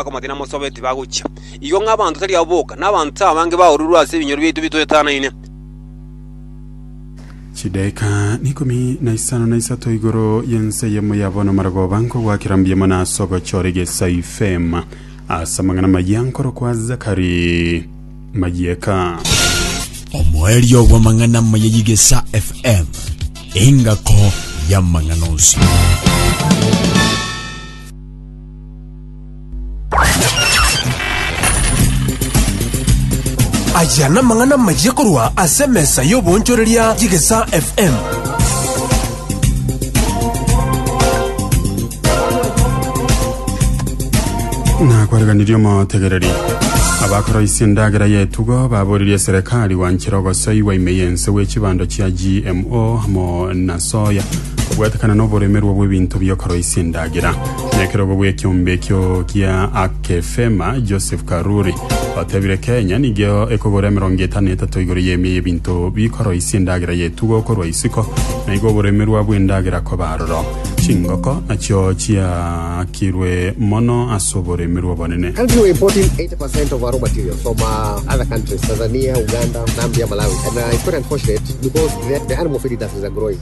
bakamwatera namosobe tibagochia. Igo ng'a abanto tari abo boka, na abanto abange baororigwe ase ebinyoro biaito bitoetanaine. Chidaeka n'ikomi na isano na isato igoro y'ense eyemo yabona amarogoba nkogwakera mbuya mono ase ogochora egesa ifema ase amang'ana amaya nkorokwa Zakari Mayeka. Omoerio bw'amang'ana amaya y'egesa FM, engako y'amang'ana onsi. Aya namang'ana amayia korwa ase emesa y'oboonchoreria y'Egesaa FM. nakwareganirie omotegereri abakoroisia endagera yetugo baboririe serikali gwanchera ogosoi gwa ime yense gwe chibando chia gmo amo na soya kobwatekana n'oboremerwa bw'ebinto biokoroisia endagera Na ekerogo bw'ekiombe ekio kia Akefema, Joseph Karuri otebire Kenya nigo ekogora emerongo etano etato igoro y'emia y'ebinto bikoroisia endagera y'etugo korwa isiko, na igo oboremerwa bw'endagera koba aroro. Chingoko nachio chiaakirwe mono ase oboremerwa obonene. Country we're importing 80% of our raw material from uh, other countries, Tanzania, Uganda, Zambia, Malawi. And uh, it's quite unfortunate because the, the animal feed industries are growing.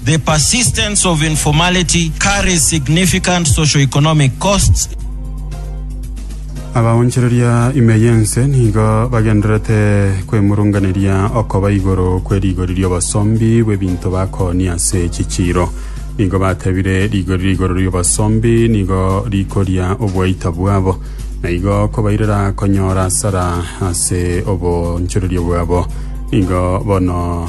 The persistence of informality carries significant socio-economic costs. Abaonchoreria ime y'ense nigo bagendererete kwemurunganeria okoba igoro kwe rigori ri'obosombi bw'ebinto bakoonia ase chichiiro. Nigo batebire rigori rigoro ri'obosombi nigo rikoria obwaita bwabo, na igo kobairera konyora asara ase obonchoreria bwabo. Nigo bono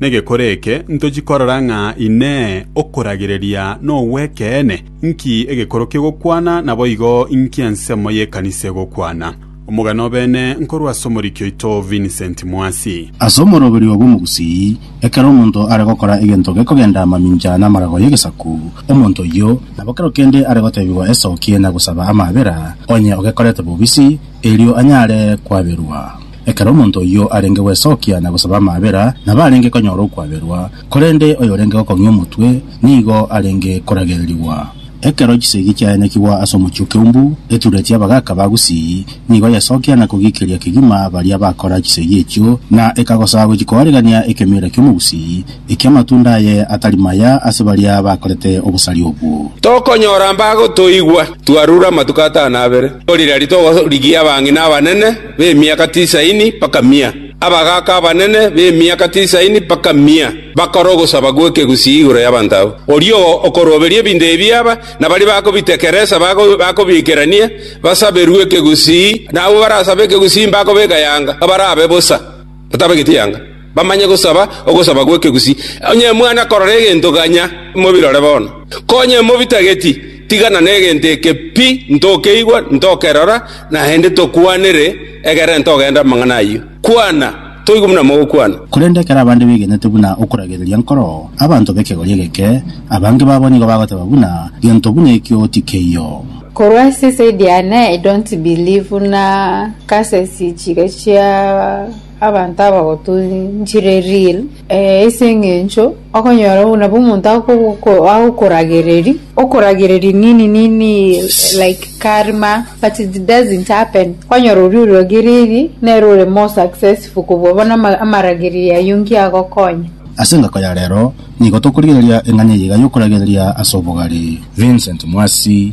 Negekore eke ntochie korora ng'a Inee, okoragereria nogw'ekeene? Nki egekorokia ogokwana, naboigo nki ensemo y'ekanisa egokwana? Omogano obene nkorwa ase omoriki oito Vincent Mwasi. Ase omoroberio bw'Omogusii, ekero omonto are gokora egento gekogenda mamincha namarago y'egesaku, omonto oyio nabo kero kende are gotebigwa esokie na gosaba amaabera, onye ogekorete bobisi, erio anyare kwaberwa. Ekero omonto oyio arenge gwesokia na gosaba amaabera, nabo arenge konyora okwaberwa, korende oyorenge gokong'ia omotwe nigo arenge koragererigwa. Ekero chisegi chiayanekigwa ase omochie o Keumbu, etureti y'abagaaka ba Gusii nigo yesokia na kogiikeria kegima baria bakora chisegi echio, na ekagosa gochia koorigania ekemeera ki'Omogusii eki'amatunda aye atari maya ase baria bakorete obosari obwo. Tokonyora mbagotoigwa, twarure amatuko atano abere, korire aria togorigia abang'ina abanene. b'emiaka tisaini mpaka mia, abagaaka abanene b'emiaka tisaini mpaka mia, bakore ogosaba gw'ekegusii igoro y'abanto abwo. Oria okoroberia ebinto ebi aba, na baria bakobitekeresa bakobiikerania, basaberwe ekegusii, na abwo barasabe ekegusii mbakobeka yanga, barabe bosa, batabegeti yanga. Bamanye gosaba ogosaba gw'ekegusii. Onye mwana korora egento ganya, mobirore bono. Konye mobitageti, tigana negento eke pi, ntokeigwa, ntokerora, naende tokwanere, egerera ntogende amang'ana ayio. Kwana, toigwe buna mogokwana. Korende ekero abande begenete buna okoragereria nkoro abanto b'ekegori egeke, abange babo nigo bagoteba buna, Gento buna ekio tikeiyo. Korwa ase side yane I don't believe buna cases ichiga chia. Abanto abagotunchire ril, ee, ase engencho okonyora buna omonto agogo- agokoragereria, okoragereria nini nini like karma, but it doesn't happen. Okonyora oria oragereiri, nere ore more successful kobua bono ama- amaragereiri ayio nki agokonya. Ase engako ya rero, nigo tokorigereria eng'aini eyaiga y'okoragereria ase obogare. Vincent Mwasi.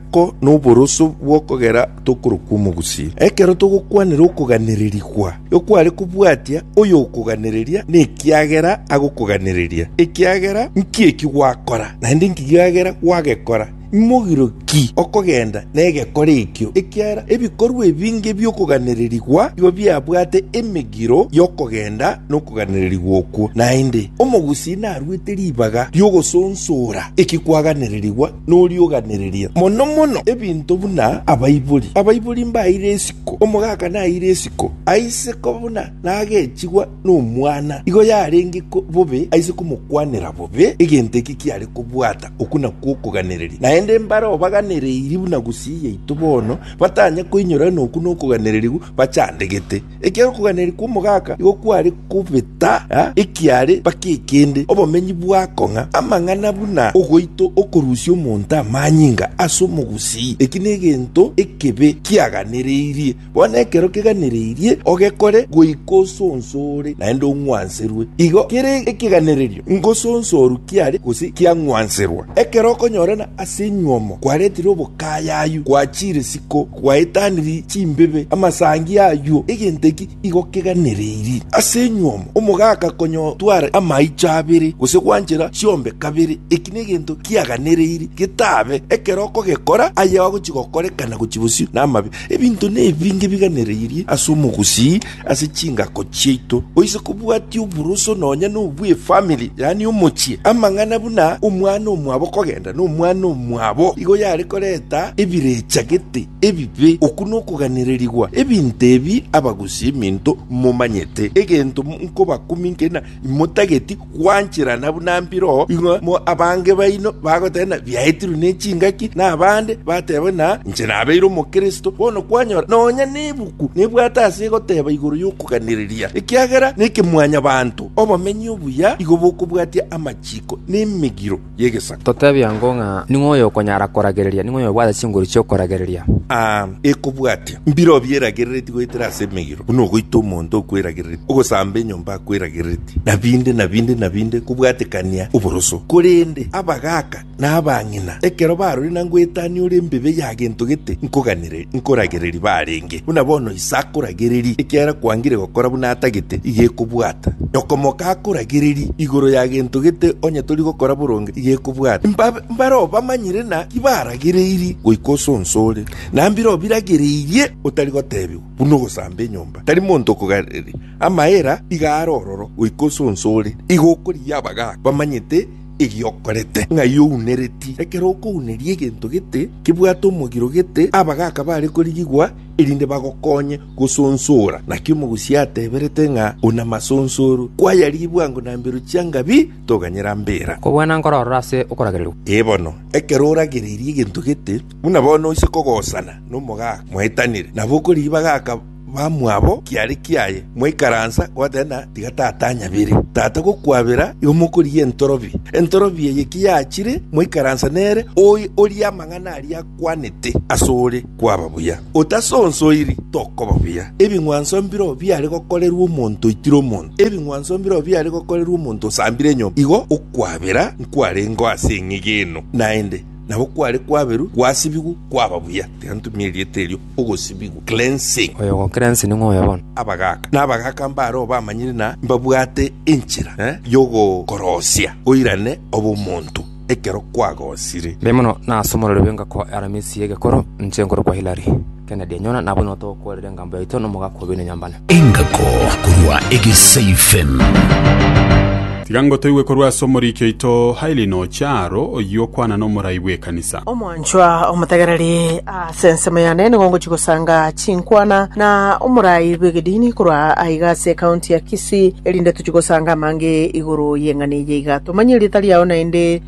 Ko noboroso bw'okogera tokorokwa omogusii. Ekero togokwanera okoganererigwa, ekware kobwatia oyokoganereria nekiagera agokoganereria. Ekiagera nki eki gwakora? Naende nki kiagera gwagekora? Imogiro ki okogenda negekora ekio? Ekiagera ebikorwa ebinge bi'okoganererigwa igo biabwate emegiro y'okogenda nokoganererigwa okwo. Naende, omogusii narwete ribaga ri'ogosonsora eki kwaganererigwa. noria oganereria mono mono ebinto buna abaibori. Abaibori mbaeire isiko, omogaka naeire isiko aise koba buna nagechigwa nomwana, igo yarenge ko bobe aise komokwanera bobe egento eke kiare kobwata, okwo nakwo okoganereria. Naende mbare obaganereirie buna gusii yaito bono, batanya koinyora ng'a okwo nokoganereria gwa bachandegete. Ekiagera okoganeria kw'omogaka nigo kware kobeta ekiaare mpaka ekende, obomenyi bwakong'a amang'ana buna ogoita okorusia omonto amanyinga ase omogusii. Eki negento ekebe kiaganereirie. Bono ekero keganereirie ogekore goika osonsore naende ong'wanserwe. Igo kere ekeganererio ngosonsorwe kiare gose kiang'wanserwa. Ekero okonyorana ase enywomo kwaretire obokayayu, gwachire siko. Gwaetaniri chimbibe, amasangi ayuo egento eki igo keganereiri ase enyuomo, omogaka konyotwara amaicho abere gose gwanchera chiombe kabere, eki negento kiaganereiri getabe ekero okogekora aye agochi gokorekana gochi bosio namabe. Ebinto nebi ngebiganereirie ase omogusii. Ase chingako chiaito oise kobwatia oburoso nonya nobw'efamili, yaani omochie. Amang'ana buna omwana omwabo kogenda nomwana omwabo igo yare koreta ebirechagete ebibe. Okwo nokoganererigwa ebinto ebi abagusi eminto momanyete. Egento nkobakumia nkina, Imotageti gwancherana buna mbiro ing'we mo abange baino bagoteba ng'a biaetirwe ne chingaki, na abande bateba ng'a inche nabeire omokristo. Bono kwanyora nonya nebuku nebwate ase egoteba igoro y'okoganereria, ekiagera neke mwanyabanto, obomenyi obuya igo bokobwatia amachiko nemegiro. y'egesaku. Totebie ango ng'a ning'o oyokonyara koragereria, ning'o oyobwate chinguru chi'okoragereria? A Ekobwatia mbirobio eragereretie goetera ase emegiro, buna ogoita omonto okweragereretie, ogosamba enyomba akweragereretie, na binde, na binde, na binde, kobwatekania oboroso. Korende abagaaka na abang'ina, ekero barorire na ngoetania ore embibe ya gento gete, nkoganire. Nkoragereria barenge, buna bono ise akoragereria, ekiagera kwangire gokora buna atagete, iga ekobwata. Okomoka akoragereria igoro ya gento gete, onye tori gokora boronge, iga ekobwata. Mbabe mbare obamanyire naki baragereirie goika ose onsi ore, na mbire obiragereirie otari gotebigwa, buna ogosamba enyomba. Tari monto okogarereria amaera iga are ororo goika ose onsi ore, iga okorigia abagaaka bamanyete. Erio okorete ng'ai ounereti? Ekero okouneria egento gete kebwate omogiro gete, abagaaka bare korigigwa erinde bagokonye gosonsora. Naki omogusii ateberete ng'a ona masonsoro, kwayarigia bwango na mbero chia Ngabi toganyera mbera. Kobwana nkororora ase okoragererwa. Ee bono, ekero oragereirie egento gete, buna bono oise kogosana nomogaaka mwaetanire, nabo okorigia bagaaka. Bamwabo kiare kiaye, mwaikaransa gotenena tiga tata anyabere. Tata gokwabera igo mokorigia entorobi. Entorobi eye ki yachire, mwaikaransa nere, oye orie amang'ana aria akwanete asore kwaba buya. Otasonsoiri, tokoba buya. Ebing'wanso mbireo biare gokorerwa omonto oitire omonto, ebing'wanso mbireo biare gokorerwa omonto osambire enyomba. Igo okwabera nkwarengeo ase eng'egeno, naende nabo kware kwaberwa gwasibigwa kwaba buya. Tiga ntumie erieta erio. ogosibigwa, cleansing. Oyo ogocleanse ning'o oyo bono? Abagaaka. Na abagaaka mbareo bamanyire na mbabwate enchera y'ogokorosia oirane obomonto ekero kwagosire. Mbe mono nase omorero bw'engako Aramisi y'egekoro, inche nkorokwa Hilary. Kennedy, Enyora, nabwo nigo togokoorera engambo yaito na omogaka oboino nyambane. Engako korwa egeseifen. Tiga ngotoigwe korwa ase omoriki oito Hailey noche aro, oyio okwana nomorai bw'ekanisa. Omwanchwa omotegereri ase ensemo yane nigo ngochia gosanga chinkwana na omorai bw'egedini korwa aiga ase ekaunti ya Kisii, erinde tochie gosanga amange igoro y'eng'ana eye iga tomanye erieta riao naende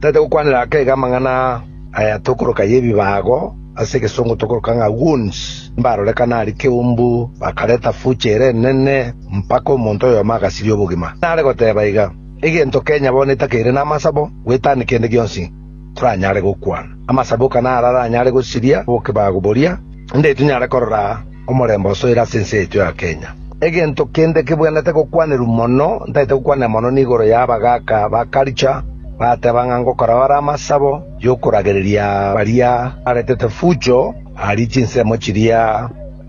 Tari togokwanera akeega amang'ana aya tokoroka y'ebibaago, ase egesongo tokoroka ng'a wounds, mbarorekana aria keumbu, bakareta future ere enene, mpaka omonto oyomo agasiria obogima. Nare goteeba iga, Egento kenya bono etakeire namasabo, gwetania kende gionsi toranyare gokwana. Amasabo oka naro aranyare gosiria obokebaago boria, nde tinyare korora. Omorembe osoire ase ense yaito ya Kenya. Egento kende kebwenerete gokwanerwa mono, ntaete gokwanera mono, nigoro y'abagaaka ba culture bateba ng'a ngokorao are amasabo y'okoragereria baria baretete fujo aria chinsemo chiria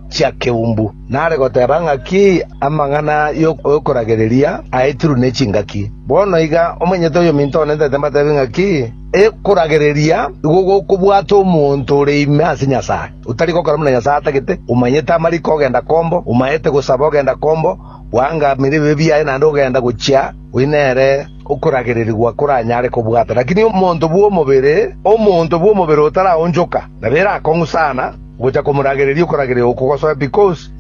chia keumbu. Nare goteba ng'aki amang'ana y'okoragereria aetirwe ne chingaki. Bono iga omwenyete oyominto one ntaete mbatebie ng'aki ekoragereria igo gokobwata omonto ore ime ase Nyasae. Otari gokora buna Nyasae atagete, omanyete amariko ogenda kombo, omaete gosaba ogenda kombo, gwangamire ebibe biaye naende ogenda gochia, oyio nere okoragererigwa koranyare kobwata. Lakini omonto bw'omobere, omonto bw'omobere otaraonchoka, nabo erakong'u sana gocha komoragereria okorageria oko gosoe,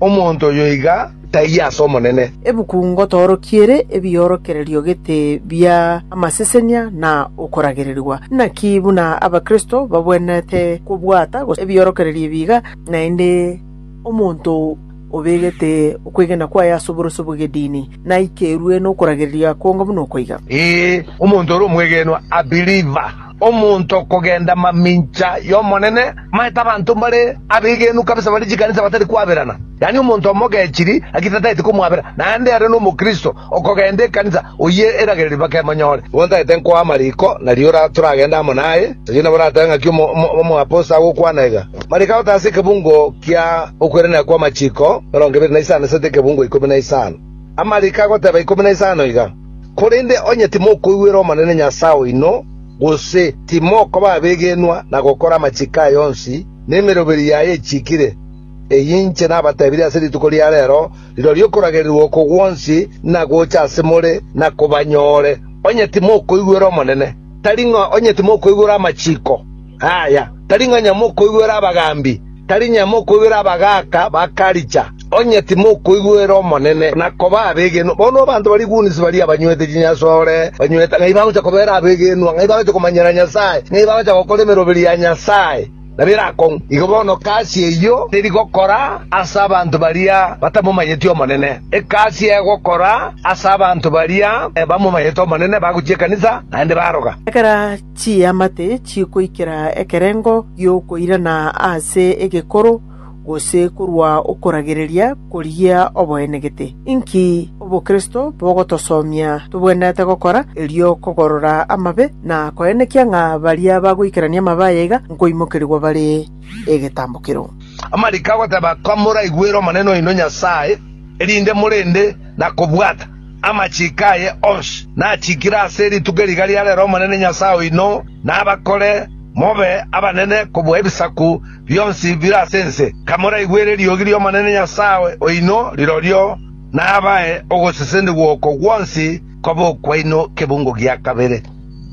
Omonto oyo iga taiyo ase Omonene. Ebuku ngotoorokia ere ebiorokererio gete bia amasesenia na okoragererigwa. Naki buna Abakristo babwenerete kobwata gose ebiorokererio ebi iga, naende omonto obegete okwegena kwaye ase oboroso bw'egedini naikerwe nokoragereria akonga buna oko iga. Ee, omonto ore omwegenwa, a believer. omonto kogenda mamincha y'Omonene, manyete abanto mbare abegenwa kabisa bare chikanisa batari kwaberana, yaani omonto omogechiri lakini tataeti komwabera, naende ere n'omokristo okogenda ekanisa, oyio eragererio bakemonyore. Igo ntagete nkoa amariko na riora toragende amo naye, oyio nabo oratebe ng'aki omoaposto agokwana iga, Mariko agotaase ekebungo kia okweranera kw'amachiko emerongo ebere na isano esete ekebungo ikomi na isano. Amariko agoteba ikomi na isano iga. Korende onye timokoigwera Omonene Nyasae oino, gose timokoba abegenwa na gokora amachiko aye onsi, na emeroberi yaye echiikire, eyio inche nabatebirie ase rituko ria reero, rirorio okoragereirwa oko gwonsi nagocha ase more na kobanyore, onye timokoigwera Omonene, tari ng'a onye timokoigwera amachiko. Aaya, tari ng'a nyamokoigwera abagaambi, tari nyamokoigwera abagaaka bakaricha, onye timokoigwera Omonene, na koba abegenwa. Bono abanto baria iguunisi baria abanywete chinyasore, banywete ng'ai bagocha kobera abegenwa, ng'ai bagocha komanyera Nyasae, ng'ai bagocha gokora emeroberi ya Nyasae, na birakong'u. Igo bono egasi eyio teri gokora ase abanto baria batamomanyeti Omonene. Egasi egokora ase abanto baria bamomanyete Omonene, bagochia ekanisa, naende baroga. Ekero Chiamate chikoikera ekerengo gi'okoirana ase egekoro, gose korwa okoragereria koria oboenegete. Inki obokristo bogotosomia tobwenerete gokora erio kogorora amabe na koenekia ng'a baria bagoikerania amabe aya iga nkoimokerigwa bare egetambokero? Amariko agoteba, Komoraigwere Omonene oino Nyasae, erinde morende na kobwata. Amachiko aye onsi nachikire ase rituko eri riga ria rero Omonene Nyasae oino nabakore mobe abanene kobua ebisaku bionsi bire ase ense, kamoraigwere eriogi ri'Omonene Nyasae oino, rirorio nabae ogosesenigwa oko gwonsi kobe okwaino kebungo gia kabere.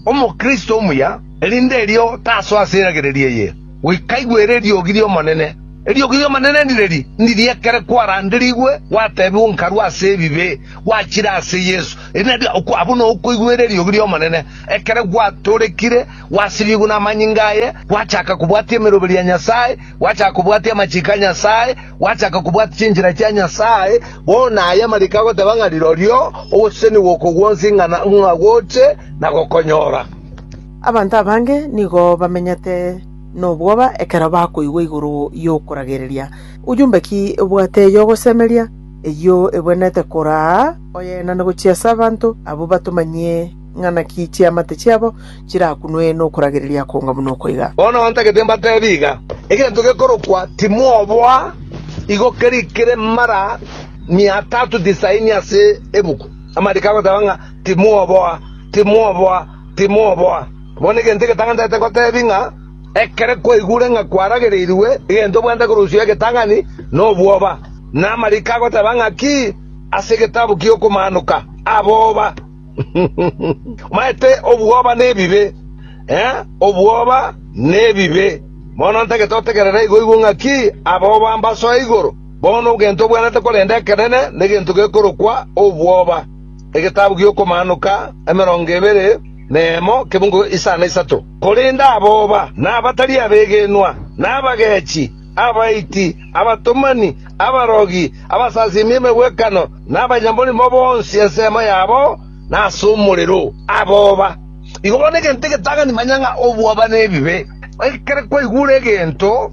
Omokristo omuya, erinde erio tasoa ase eragereria eye. Goika igwere eriogi ri'Omonene. Eriogi ri'Omonene nireri, ndiria ekere kwaranderigwe gwateebigwe nkarwa ase ebibe, gwachire ase Yeso, erio nario abwo nokoigwera eriogi ri'Omonene, ekere gwatorekire, gwasibigwe namanyinga aye, gwachaka kobwatia emeroberi ya Nyasae, gwachaka kobwatia amachiko a Nyasae, gwachaka kobwatia chinchera chia Nyasae. Bono aya amariko agoteeba ng'a rirorio ogoseseniwa oko gwonsi ng'a goche na gokonyora. Abanto abange nigo bamenyete nobwoba ekero bakoigwa igoro y'okoragereria. Ujumbe ki obwate y'ogosemeria eyio ebwenerete koraa oyenane gochia ase abanto abwo batomanyie ng'a naki chiamate chiabo chirakunwe nokoragereria konga buna okoiga? Bono ntagete mbateebie iga, egento gekorokwa timwoboa igo kerikire mara mia tatu tisaini ase ebuku. Amariiko agoteba ng'a timwoboa, timwoboa. timoboa. Bono egento egetang'anete ngotebi ng'a, ekero kwaigure ng'a kwaragereirwe egento bwenta korosio egetang'ani nobwoba, na amariko agoteba ng'a ki ase egetabu ki'okomanoka aboba. Omanyete obwoba nebibe, ee, obwoba nebibe. Bono ntagete otegerere igoigwo ng'a ki aboba mbasoe igoro. Bono ogento obwenerete korende ekenene negento gekorokwa obwoba. Egetabu gi'Okomaanoka, emerongo ebere na emo, ekebugu isano na isato. Korende aboba, na abatari abegenwa, na abagechi, abaiti, abatomani, abarogi, abasasiimi emegwekano, na abanyamorimo bonsi ensemo yabo nase omorero. Aboba, igo bono egento egetang'ani manya ng'a obwoba nebibe. Ekero kwaigure egento.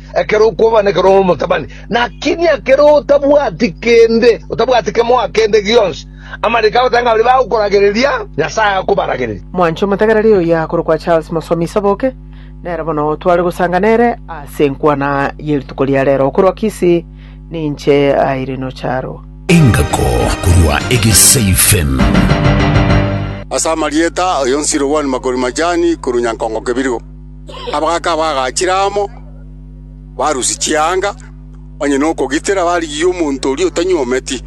ekero okwobana, ekero ore omotabani. Lakini ekero otabwati kende, otabwati kemoa kende gionsi, amariko agoteba ng'a baria bagokoragereria, Nyasae akobaragereria. Mwanche omotegereri oyio akorokwa Charles Mosomi Saboke, nere bono tware gosanga nere ase enkwana ye rituko ria rero. Okorwa Kisii, ninche Irene Ocharo. Engako korwa Egesaifen. Ase amarieta, Oyo nsirobwani makori majani, korwa nyankongo kebirigo. Abagaaka abagachire amo barusia chianga, onye nokogitera barigie omonto oria otanyuometi.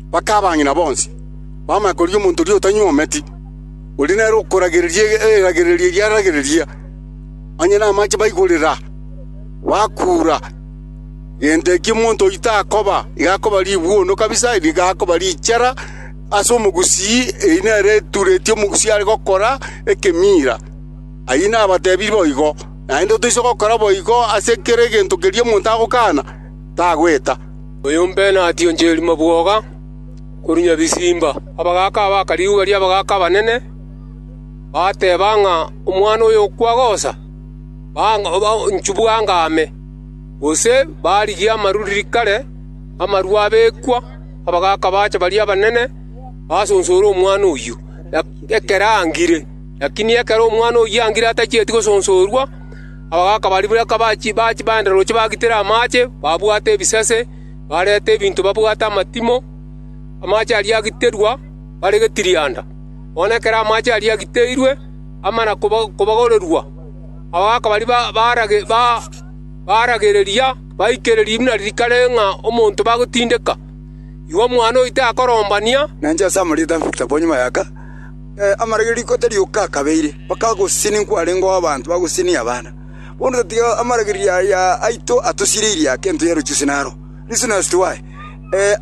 Mpaka abang'ina bonsi bamanye korigia omonto oria otanyuometi, oria nere okoragereria eragererio eria aragereria. Onye namache baigorera, bakuura, gento ekio omonto oyio takoba, igo akoba ribuono kabisa, nigo akoba richara ase omogusii, eyio nere eturetie omogusii are gokora ekemiira. Ayio nabatebirie boigo, naende toise gokora boigo ase kera egento keria omonto agokaana, tagweta.” “Oyombe nationcheri mabwoga korwa nyabisimba. Abagaaka abaka rigwa ri'abagaaka abanene bateba ng'a omwana oyo okwa gocha, banchubwa anga ame, gose barigia amaruriri kare amarwa abekwa. Abagaaka baacha baria abanene basonsore omwana oyio ekero angire. Lakini ekero omwana oyio angire atachieti gosonsorwa, abagaaka baria buna kabachia baenda roche bagitere amaache, babwate ebisase, barete ebinto babwate amatimo, amaache aria agiterwa bare getirianda. Bono ekero amaache aria agiteirwe amana kobagorerwa, abagaaka baria baaragereria baikereria buna rikare ng'a omonto bagotindeka. Igo omwana oyio takorombania. Amarage riko tarioka akabeire, mpaka agosisini nkwarenge oo abanto bagosisini abana. Bono tatiga amaragererio aya aito atosireirie ake ento ya ruchusi naro. Listen as to why.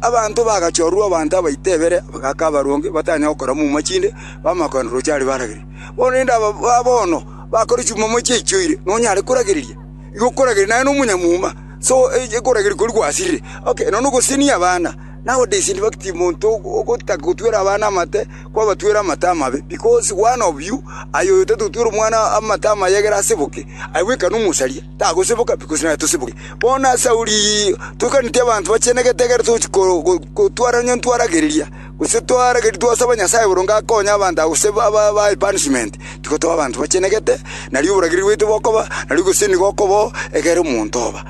Abanto bagachorwa abanto abaito ebere, abagaaka abaronge, batanya gokora muma chinde, bamanya kogenda roche aria baragerie. Bono rende aba ba bono bakore chimuma chiaichoire, nonyare koragereria? Igo okorageria naye nomonyamuma, so ekorageri koria gwasirire. Okay, nonya ogosisini abana, Nowadays in fact monto ogotaka gotwera abana amate kwabatwera amate amabe, because one of you aye oyo tatotwera omwana amate amaye egere aseboke, aye bweka nomosaria, tagosoboka because naye tosoboke. Bono ase ayio rigirii toikaneti abanto bachenegete egere tochi ko- ko- kotwara onye ntwaragereria, gose twarageria twasaba Nyasaye boronge akonye abanto abo gose ba- ba- baye punishment, tigotoba abanto bachenegete, nario oborageri bwaito bokoba, nario gose nigo okoba oo egere omonto oba.